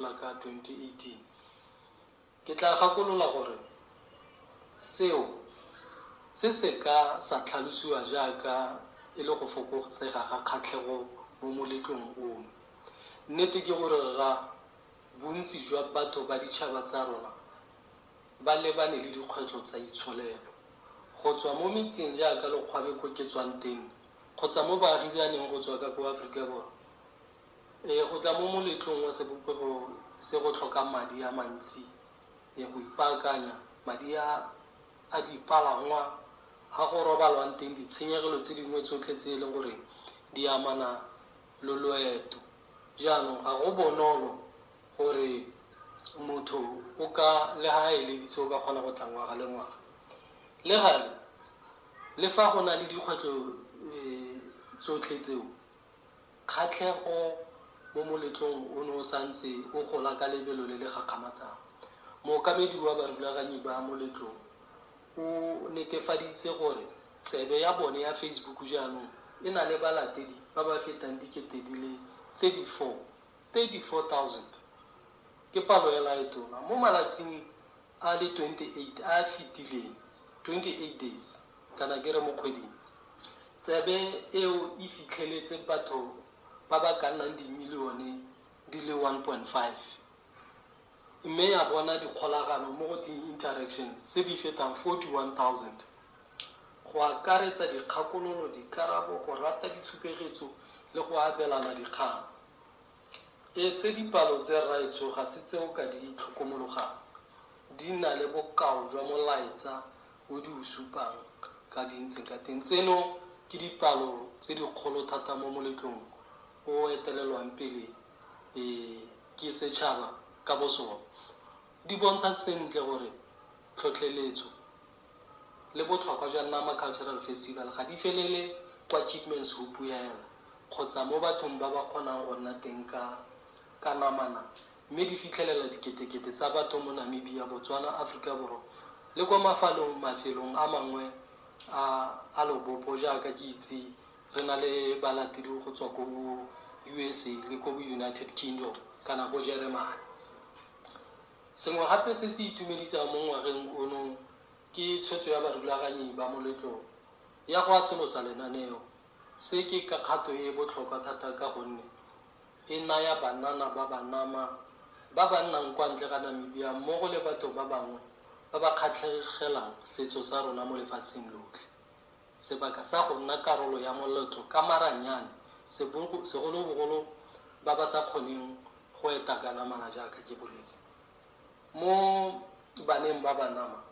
la ka 2018. Ke tla gakolola gore seo se se ka sa tlhalosiwa jaaka e le go fokotsega ga kgatlhego mo moletlong ono. Nnete ke gore rra bontsi jwa batho ba ditšhaba tsa rona ba lebane le dikgwetlho tsa itsholelo. Go tswa mo metseng jaaka lokgwabe ko ke tswang teng kgotsa mo baagisaneng go tswa ka ko Aforika Borwa, Ee, go tla mo moletlong wa sebopego se go tlhoka madi a mantsi ee go ipaakanya, madi a a dipalangwa, a go robalwang teng, ditshenyegelo tse dingwe tsotlhe tse e leng gore di amana lo loeto. Jaanong ga go bonolo gore motho o ka, le ga a eleditse, o ka kgona go tla ngwaga le ngwaga. Le gale, le fa go na le dikgwetlho tsotlhe tseo, Kgatlhego mo moletlong ono o santse o gola ka lebelo le le gakgamatsang. Mookamedi wa barulaganyi ba moletlong o netefaditse gore tsebe ya bone ya Facebook jaanong e na le balatedi ba ba fetang dikete di le 34, 34000. Ke palo e lae tona mo malatsing a le 28 a a fetileng, 28 days, kana ke re mo kgweding, tsebe eo e fitlheletse batho ba ba ka nnang dimilione di le 1.5 mme ya bona dikgolagano mo go teng interactions tse di fetang 41,000, go akaretsa dikgakololo, dikarabo, go rata ditshupegetso le go abelana dikgang. Etse dipalo tse rraetsho ga se tse o ka di tlhokomologang, di na le bokao jwa molaetsa o di o supang ka di ntseng ka teng. Tseno ke dipalo tse dikgolo thata mo moletlong o o etelelwang pele ke setšhaba ka bosone. Di bontsha sentle gore tlhotlheletso le botlhokwa jwa Nama Cultural Festival ga di felele kwa Chipman's Hoop hela kgotsa mo bathong ba ba kgonang go nna teng ka ka namana mme di fitlhelela diketekete tsa batho mo Namibia, Botswana, Aforika Borwa le kwa mafalong mafelong a mangwe a a lobopo jaaka ke itse re na le balatedi go tswa ko bo USA le ko bo United Kingdom kana ko Jeremane. Sengwe gape se se itumedisang mo ngwageng ono ke tshwetso ya barulaganyi ba moletlo ya go atolosa lenaneo. Se ke ka kgato e e botlhokwa thata ka gonne e naya banana ba Banama ba ba nnang kwa ntle ga Namibia mmogo le batho ba bangwe ba ba kgatlhegelang setso sa rona mo lefatsheng lotlhe, Sebaka sa go nna karolo ya moletlo ka maranyane, segolobogolo ba ba sa kgoneng go eta ka namana jaaka ke boletse. Mo baneng ba Banama,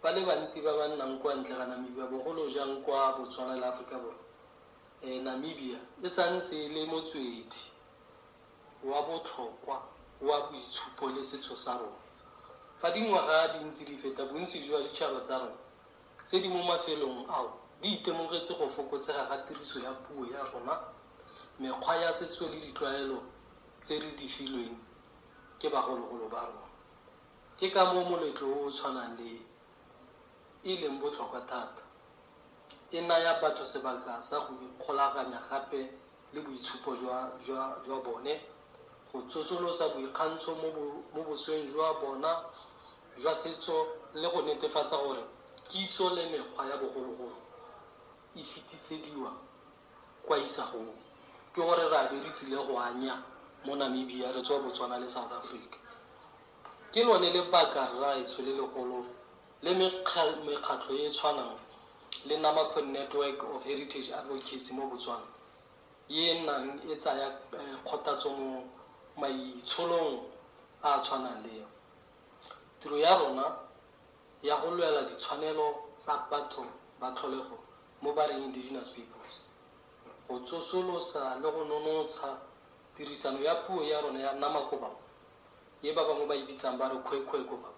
ba le bantsi ba ba nnang kwa ntle ga Namibia, bogolo jang kwa Botswana le Aforika Borwa, Namibia e sa ntse e le motswedi wa botlhokwa wa boitshupo le setso sa rona. Fa dingwaga di ntse di feta, bontsi jwa ditšhaba tsa rona tse di mo mafelong ao di itemogetse go fokotsega ga tiriso ya puo ya rona, mekgwa ya setso le ditlwaelo tse re di filweng ke bagologolo ba rona. Ke ka moo moletlo o o tshwanang le e e leng botlhokwa thata, e naya batho sebaka sa go ikgolaganya gape le boitshupo jwa, jwa, jwa bone, go tsosolosa boikgantsho mo, bo, mo bosweng jwa bona jwa setso le go netefatsa gore kitso le mekgwa ya bogologolo e fetisediwa kwa isagong. Ke gore ra be re tsile go anya mo Namibia re tswa Botswana le South Africa. Ke lone lebaka, rraetsho, le legolo le mekgatlho e e tshwanang le Namapho Network of Heritage Advocates mo Botswana e e nnang e tsaya kgothatso mo maitsholong a a tshwanang le a tiro ya rona ya go lwela ditshwanelo tsa batho ba tlholego mo ba reng Indigenous Peoples, go tsosolosa le go nonotsha tirisano ya puo ya rona ya Namaquabapo. e ba bangwe ba e bitsang ba re Khwekhwekhweba,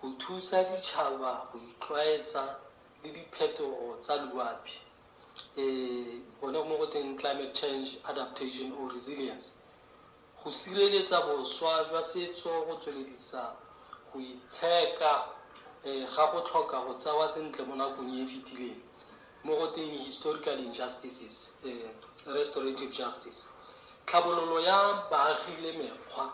go thusa ditšhaba go itlwaetsa le diphetogo tsa loapi, e, gone mo go teng Climate Change Adaptation or Resilience, go sireletsa boswa jwa setso go tsweledisa go itsheka e, ga go tlhoka go tsewa sentle mo nakong e e fetileng, mo go teng historical injustices, restorative justice, tlhabololo ya baagi le mekgwa